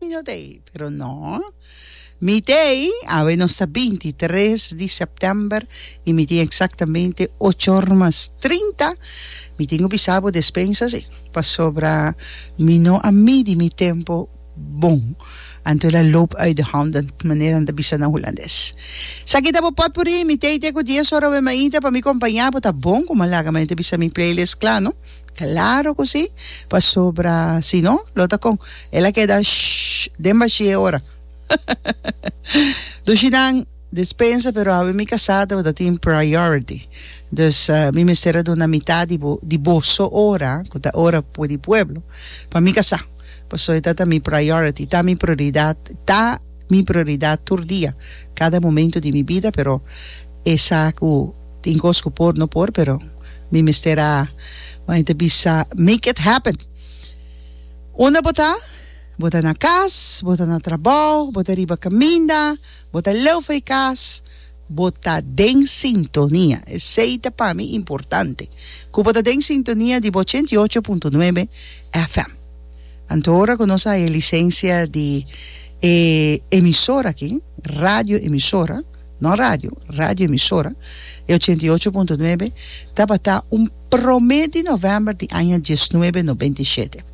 Niño t'ei, pero no. Mi t'ei, awe nos ta binti tres di sèptèmber i mi tin eksaktamente ocho òr mas trinta. Mi tin ku bisa bo despensas ei, pasobra mi no a midi mi tempu bon. Anto el a loop uit de hònd, den manera nan ta bisa na hulandes. Esaki ta bo pòtpuri, mi t'ei te ku dies òr awe mainta pa mi kompanya bo. Ta bon ku Malaga, ma e ta bisa mi playlist kla no. Claro cu si, pasobra si no, lo ta con? El a keda shhh den bashi e ora. Dushi nan, dispensa, pero awe mi casá tabata tin priority, dus mi mester a duna mitad di bo, di boso ora, cu ta ora pue di pueblo, pa mi casá, pasobra e ta ta mi priority, ta mi prioridad, ta mi prioridad tur dia, cada momento di mi bida, pero esa cu. Tin cos cu por no por pero mi mester a como ente bisa make it happen. Unda bo ta? Bo ta na cas, bo ta na trabao, bo ta riba caminda, bo ta leu for e cas, bo ta den sintonia. Esey ta pa mi importante cu bo ta den sintonia di bo ochenta i ocho punto nuebe FM. Anto ora cu nos a haña licencia di e emisora aki, radio emisora, Nos radio, radio emisora, e ochenta i ocho punto nuebe, tabatá un promé di novèmber di aña diesnuebe nobenta i shete.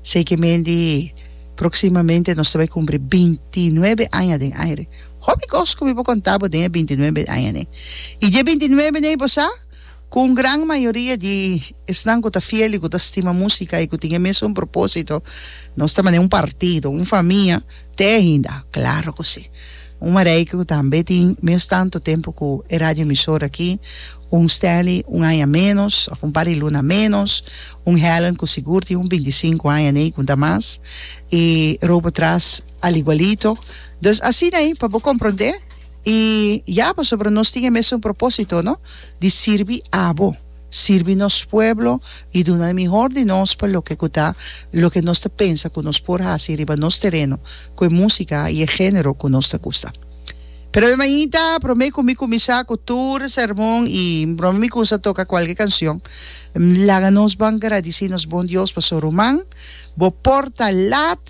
Sei ke men di proksimamente nos ta bai kumpri binti i nuebe aña den aire. Hopi kos ku mi por kontá bo den e binti i nuebe aña nei. I dje binti i nuebe nei bo sa ku un gran mayoria di esnan ku ta fiel i ku ta stima músika i ku tin e mesun propósito, nos ta manera un partido, un famia. Te ainda? Claro cu si. Un mareike cu tambe tin mes tanto tempo cu e radioemisora aki, un Stanley un aña menos, of un par di luna menos, un Helen cu sigur tin un binti sinku aña nei cu ta mas, y Robo tras al igualito. Dus asina ei, pa bo comprende, y ya pasobra nos tin e mesun proposito, no? Di sirbi abo. sirbi nos pueblo i duna e mihor di nos pa loke ku ta loke nos ta pensa ku nos por hasi riba nos tereno ku e músika i e género ku nos ta gusta. Pero mi mainta promé ku mi kuminsá ku tur e sermon i promé mi kuminsá toka kualke kansion, laga nos ban gradisí nos Bon Dios pasobra ruman bo por ta lat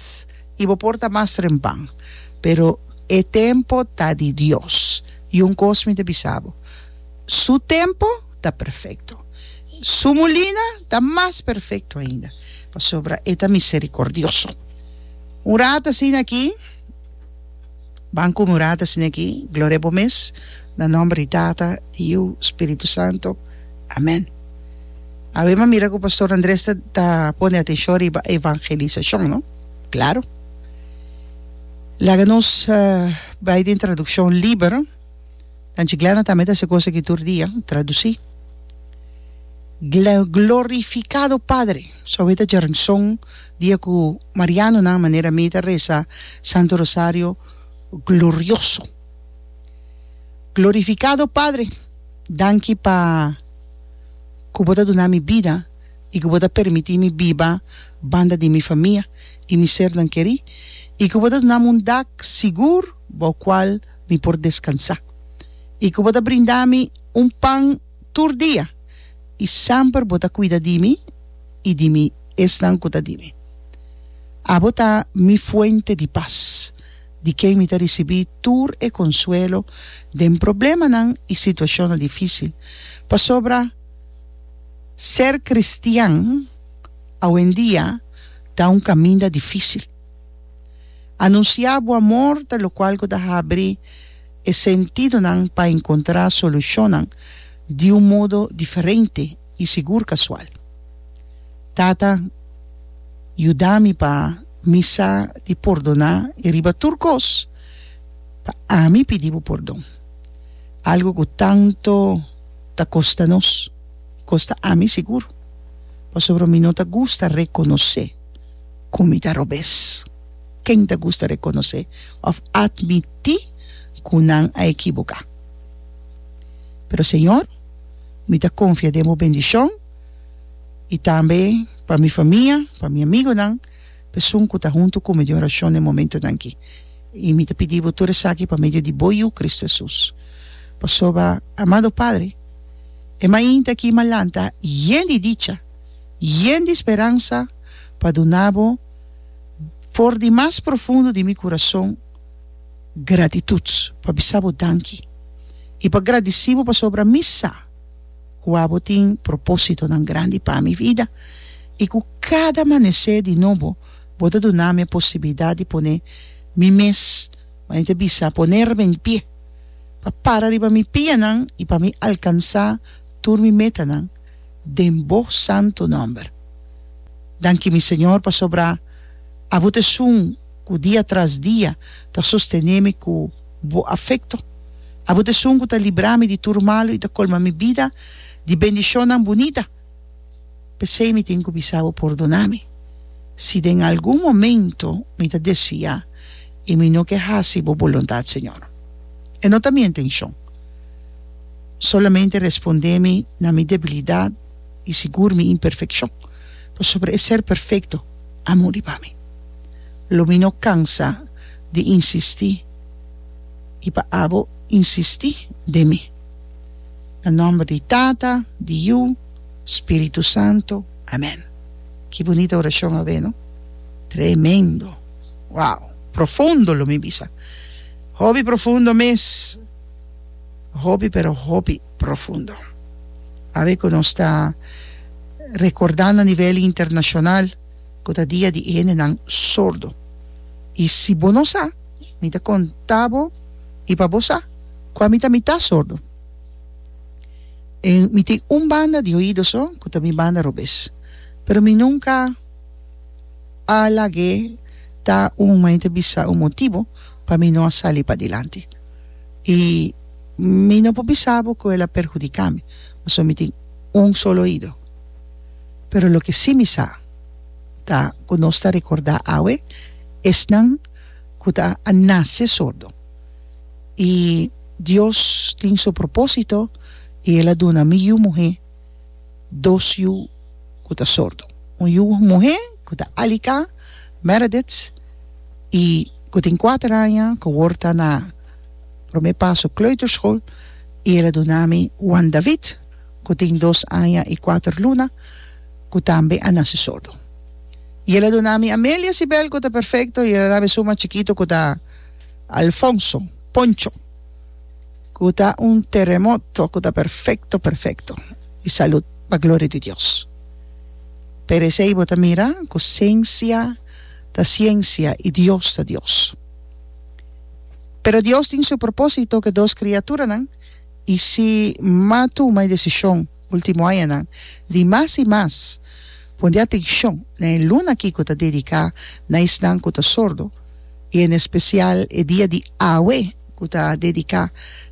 i bo por ta mas trempan, pero e tempu ta di Dios. I un kos mi ta bisa bo. Su tempu ta perfekto. Su mulina ta mas perfekto ainda, pasobra e ta miserikòrdioso. Un rat asina aki, ban kume un rat asina aki, gloria bo mes, na nòmber di Tata, di Yu, Spiritu Santu. Amèn. Awe m'a mira ku Pastor Andres ta ta pone atenshon riba evangelisashon, no? Klaru. Laga nos bai den tradukshon Liber. Nan chi Glenna tambe ta se cosa ki tur dia traduci. Glen, Glorificado Padre. So e ta dje rnson dia cu Marianonan manera mi ta reza Santo Rosario glorioso. Glorificado Padre, danki pa cu bo ta duna mi bida y cu bo ta permiti mi biba banda di mi famia y mi sernan keri y cu bo ta dunami un dak sigur bou cual mi por descansá, i cu bo ta brinda mi un pan tur dia, i semper bo ta cuida di mi i di mi esnan cu ta di mi. Abo ta mi fuente di pas, di ken mi ta ricibi tur e consuelo den problemanan i situacionnan dificil, pasobra ser cristian awendia ta un caminda dificil. Anunsiá bo amor ta lokual ku ta habri e sentidonan pa enkontrá solushonnan di un modo diferente i sigur kasual. Tata, yuda mi pa mi sa di pordoná i riba tur kos pa ami pidi bo pordon, algu ku tantu ta kosta nos, kosta ami sigur, pasobra mi no ta gusta rekonosé. ku mi ta robes. Ken ta gusta rekonosé òf atmití ku nan a ekiboká? Pero Señor, mi ta konfia den Bo bendishon i tambe pa mi famia, pa mi amigonan, pesun ku ta huntu ku mi den orashon den momentunan aki. I mi ta pidi Bo tur esaki pa medio di Bo Yu, Kristu Hesus. Pasobra, amado Padre, e mainta aki mi a lanta yen di dicha. yen di speransa pa duna bo for di mas profundo di mi kurason gratitut pa bisa bo danki i pa gradisi bo pasobra mi sa ku abo tin propósitonan grandi pa mi vida i ku kada amanesé di nobo bo ta duna mi e posibilidat di pone mi mes manera ta bisa ponerme en pie pa para riba mi pianan i pa mi alkansa tur mi metanan. den Bo santu nòmber. Danki mi Señor pasobra Abo t'esun ku dia tras dia ta sostené mi ku Bo afekto. Abo t'esun ku ta libra mi di tur malu i ta kolma mi bida di bendishonnan bunita. P'esei mi tin ku bisa Bo pordoná mi si den algun momentu mi ta desviá i mi no ke hasi Bo boluntat, Señor. E no ta mi intenshon. Solamente respondé mi na mi debilidat i sigur mi imperfekshon, pasobra e ser perfekto a muri pa mi. Lo mi no kansa di insistí i pa abo insistí den mi. Na nòmber di Tata, di Yu, Spiritu Santo, amèn. Ki bunita orashon a'wé no! Tremendo! Wow! Profundo lo mi bisa. Hopi profundo mes! Hopi pero hopi profundo. Awe ku nos ta rekordá na nivel internashonal ku ta dia di e hendenan sordo. I si bo no sa, mi ta konta bo i pa bo sa kua mi ta, mi ta sordo. Mi tin un banda di oido so ku ta mi banda robes, pero mi nunka a lag'é ta un, m'a inta bisa un motibu pa mi no a sali padilanti. y mi no por bisa bo cu el a perhudica mi, pasobra mi tin un solo oido. Pero loke si mi sa ta cu nos ta recorda awe esnan cu ta a nace sordo y Dios tin su propósito y el a duna mi yu muhe. dos yu ku ta sordo. Un yu muhé ku ta aliká, Meredith, i ku tin kuater aña ku wòrd ta na promé paso kleuterskol i el a duna mi Juan David ku tin dos aña i kuater luna ku tambe a nase sordo. I el a duna mi Amelia Sibel ku ta perfekto i el a da mi suma chikitu ku ta Alfonso, Poncho. ku ta un teremoto ku ta perfekto perfekto i salud pa gloria di Dios pero esei bo ta mira ku siensia ta siensia i Dios ta Dios pero Dios tin su propósito ke dos kriaturanan i si ma tuma e desishon ultimo añanan di mas i mas pone atenshon na e luna aki ku ta dediká na esnan ku ta sordo i en espesial e dia di awe ku ta dediká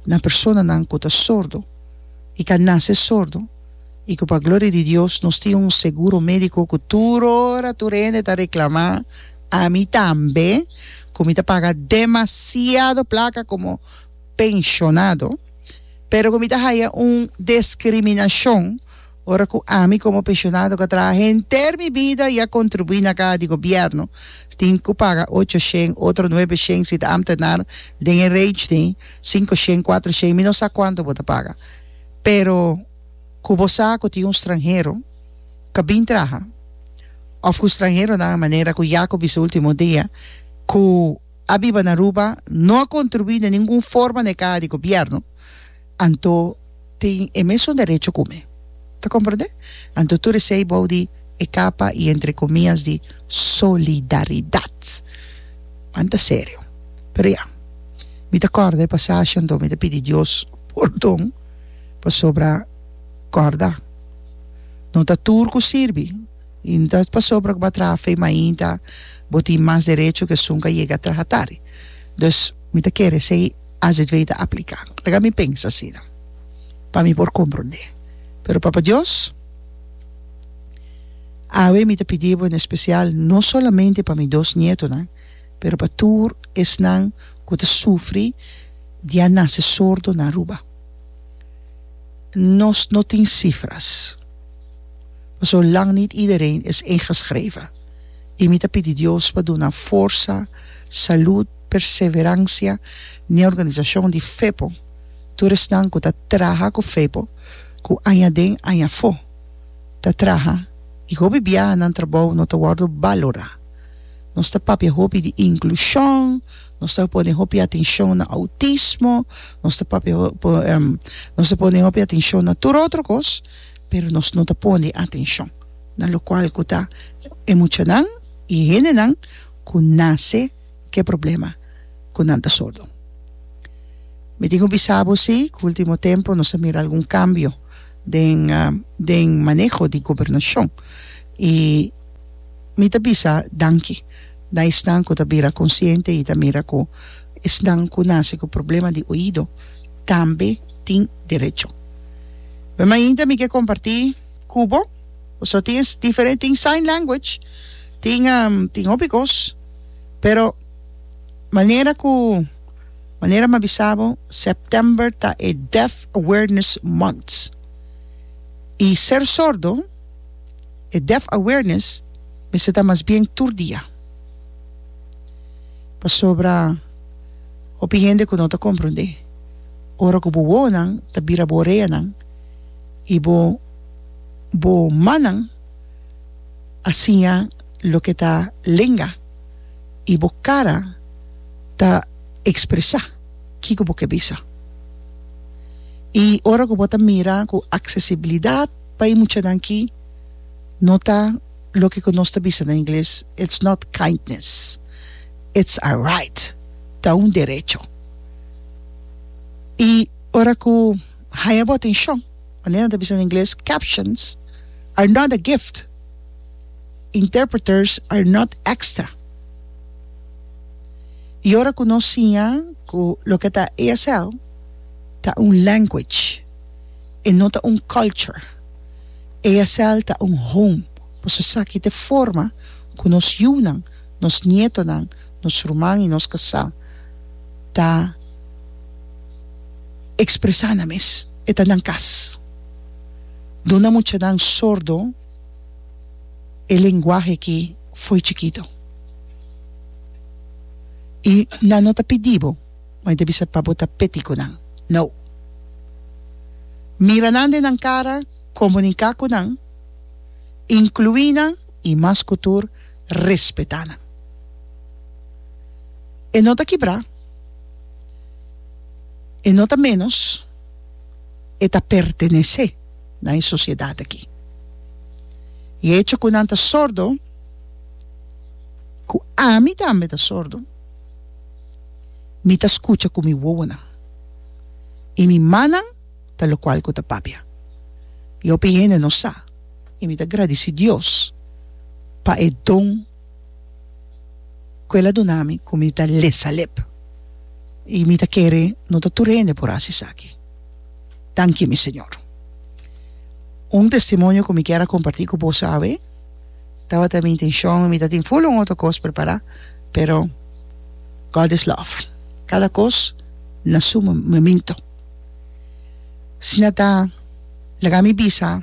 na personanan ku ta sordo i ka nase sordo i ku pa gloria di Dios nos tin un seguro médiko ku tur ora tur hende ta reklamá, ami tambe, ku mi ta paga demasiado plaka komo penshonado, pero ku mi ta haya un diskriminashon. Ora cu ami como pensionado cu a traha henter mi bida y a contribui na caha di gobierno, tin cu paga ocho shen, otro nuebe shen si ta ambtenaar den e reich tin, cinco shen, cuatro shen, mi no sa cuanto bo ta paga. Pero cu bo sa cu tin un stranhero cu a bin traha, of cu stranheronan a manera cu Jaco bisa ultimo dia, cu a biba na Aruba, no a contribui na ningun forma na e caha di gobierno, Anto tin e mesun derecho ku mi. Ta komprende? Anto tur esei bou di e kapa i entre komias di solidaridat. Pan ta serio. Pero ya. Mi ta kòrda e pasashe anto mi ta pidi Dios pordon pasobra kòrda no ta tur ku sirbi i no ta pasobra ku bo a traha fe mainta bo tin mas derecho ku esun ka yega traha tardi. Dus mi ta kere esei. AZV ta apliká. Laga mi pensa asina, pa mi por komprondé. Pero Papa Dios, awe mi ta pidí bo en espesial, no solamente pa mi dos nietonan, pero pa tur esnan ku ta sufri di a nase sordo na Aruba. Nos no tin sifras, paso lang nit iedereen is ingeschreven. I mi ta pidi Dios pa duna forsa, salud, perseveransia n'e organisashon di Fepo, tur esnan ku ta traha ku Fepo, ku añaden añafó ta traha i hopi biaha nan trabou no ta wòrdu balorá. Nos ta papia hopi di inklushon, nos ta pone hopi atenshon na outismo, nos ta papia nos ta pone hopi atenshon na tur otro kos, pero nos no ta pone atenshon na lokual ku ta e muchanan i e hendenan ku nase, ke problema ku nan ta sordo. Mi tin ku bisa bo si ku ultimo tempu nos a mira algun kambio den den maneho di gobernashon i mi ta bisa danki na esnan ku ta bira konsiente i ta mira ku esnan ku nase ku problema di oido tambe tin derecho. Bai mainta mi ke komparti ku bo tin diferente tin sign language tin tin hopi kos. Pero manera ku manera m'a bisa bo September ta e Deaf Awareness Month i ser sordo e deaf awareness mester ta mas bien tur dia pasobra hopi hende ku no ta komprondé ora ku bo wowonan ta bira bo oreanan i bo bo mannan a siña. loke ta lenga i bo kara ta ekspresá kiko bo ke bisa. I ora ku bo ta mira ku aksesibilidat pa e muchanan aki no ta loke ku nos ta bisa na ingles, it's not kindness, it's a right, ta un derecho. I ora ku haña bo atenshon, manera nan ta bisa na ingles, captions are not a gift. Interpreters are not extra. Y ora cu nos siña cu loke ta ESL ta un language e no ta un culture. ESL ta un home pasobra esaki ta e forma cu nos yunan, nos nietonan, nos ruman y nos casal ta expresa nan mes. E ta nan cas. Duna muchanan sordo. e lenguahe ki fo'i chikito. I nan no ta pidi bo, ma e ta bisa pa bo ta peti ku nan. No. Mira nan den nan kara, komuniká ku nan, inkluí nan i mas ku tur respetá nan. E no ta kibrá, e no ta ménos, e ta pertenesé. na e sociedad aki. E hecho cu nan ta sordo, cu ami tambe ta sordo, mi ta scucha cu mi wowonan y mi mannan ta locual cu ta papia. Yopi hende no sa y mi ta gradici Dios pa e don. ku el a duna mi ku mi ta lesa lep i mi ta kere no ta tur hende por hasi esaki tanki mi señor un testimonio ku mi kier a komparti ku boso awe tabata mi intenshon mi ta tin ful un otro kos prepará pero God is love kada kos na su momento si na ta laga mi bisa.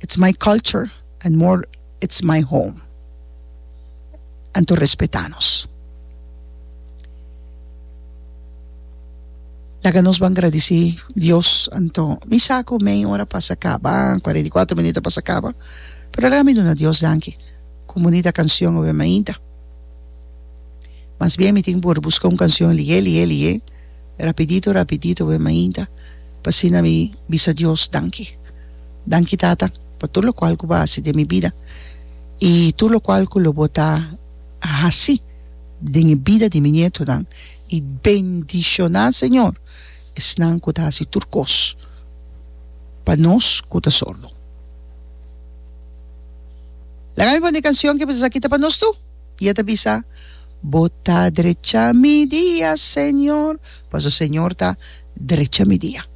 it's my culture and more it's my home anto respeta nos laga nos ban gradisi Dios anto mi sa cu meia ora pasa caba cuarenta y cuatro minuto a pasa caba pero laga mi duna Dios danki cu bunita cancion awe mainta mas bien mi tin por busca un cancion lihe lihe lihe Rapidito rapidito bai mainta pa asina mi bisa Dios danki. Danki Tata pa tur lokual ku bo a hasi den mi bida i tur lokual ku lo bo ta hasi den e bida di mi nietonan i bendishoná Señor esnan ku ta hasi tur kos pa nos ku ta sordo. Laga mi pone e kanshon ke bisa sa kita pa nos tur. I e ta bisa, Bo ta drecha mi dia, Señor, paso Señor ta drecha mi dia.